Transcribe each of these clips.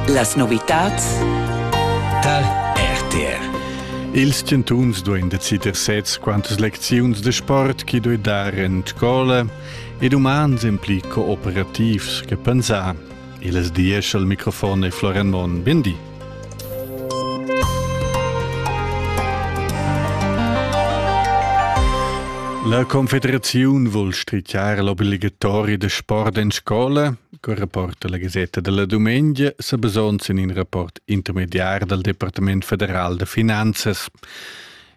Las novitads tar RTR. Ils chantuns duein decider sez quantas lecziuns de sport chi doi dar en scola ed umans en pli cooperativs che pensar. Il es dies al microfon e Floren Mon. Bindi. La Confederaziun vul strichar l'obligatoria da sport en scola, col rapport dalla Gasetta della Dumengia, sa basons in in rapport intermediar dal Departament federal da finanzas.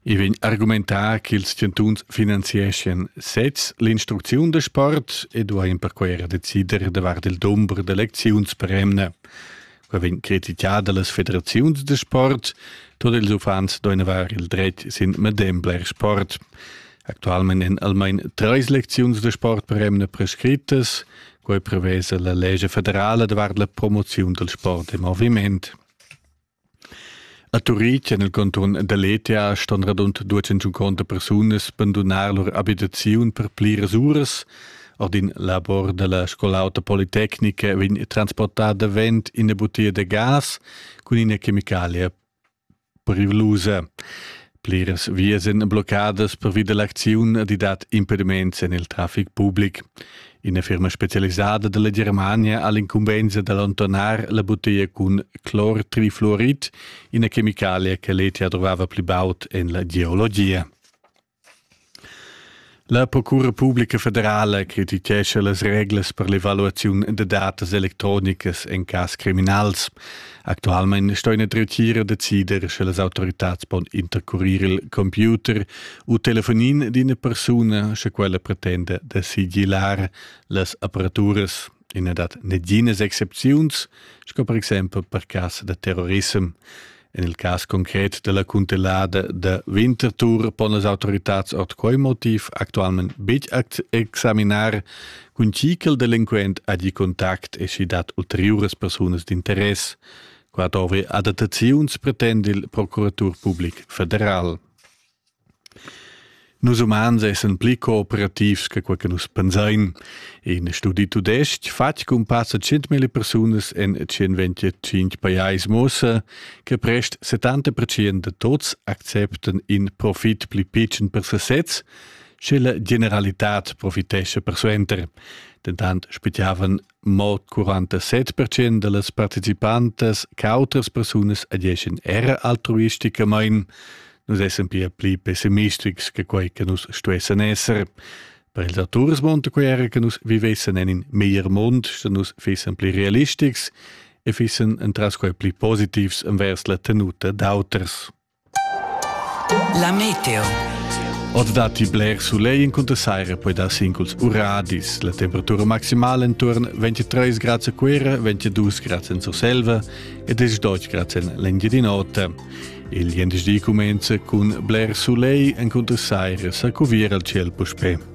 I vegn argumentà che ils chantuns finanzieschien sez l'instrucziun da sport e duain perquai era decider davart il dumber d'elecziuns per emna. Quei vegn criticà dallas federaziuns da sport. Tot ils uffants duein haver il dret sin medem bler sport. Actualment èn almain treis lecziuns de sport per emna prescrittas. Quei prevesa la lege federala davart la promoziun del sport e moviment. A Turitg en il cantun da Letia ston radund 250 persunas bandunar lur abitaziun per pliras uras. Ord in labor da la Scola auta politecnica vegn transportà davent ina butia da gas cun ina chemicalia periclusa. Pliras vias èn bloccadas pervi da l'acziun di dat impediments en il traffic public. Ina firma specialisada dalla Germania ha l'incumbensa da allontanar la bottiglia cun clor trifluorit, ina chemicalia che l'ETA trovava pli baud en la geologia. La Procura publica federala crititgescha las reglas per l'evaluaziun da datas electronicas en cas criminals. Actualmein sto ina dretgira decider, sche las autoritads pon intercurir il computer u telefonin d'ina persuna, sche quella pretenda da sigillar las aparaturas. I na dat neginas excepziuns, sco per exempel per cas da terrorissem. En il cas concret della cuntellada da Winterthur pon las autoritats ord quei motiv actualment betg examinar cun chi che il delinquent ha di contact e si dat ulteriuras persunas d'interess. Qua dovri adattaziuns, pretend il Procuratur Public Federal. Nus umans essan pli cooperativs che quei che nus pensein. In studi tudestg fatg cun passa 100.000 persunas en 125 pajais muossa che prest 70% de tots acceptan in profit pli pitschen per sesez, sche la generalitad profitescha persuenter. Dentant spettavan Mo 47 percent dallas participantas che autras persunas adeschien era altruisticamain, nus essan pia pli pessimistics che quei che nus stuessen esser. Per ils auturs monta quei era che nus vivessen en in meglier mund, sche nus fissen pli realistics e fissen entras quei pli positivs envers la tenuta d'auters. La meteo. Oz datti bler sulegl incunter saira, poi dar singuls uradis. La temperatura maximala intorno 23 grads a Cuera, 22 grads en Surselva e 18 grads en l'Engiadin'Ota. Il gentisdi comincia cun bler sulegl incunter saira, sa cuvier al ciel puspè.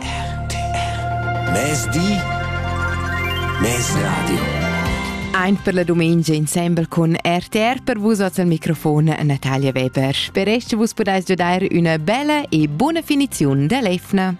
RTR Mezdi Mezdi Radio Ein per la domenica insembel con RTR per vus oz al microfon Natalia Weber. Per esch vus podais giodar una bella e buona finizione dell'Efna.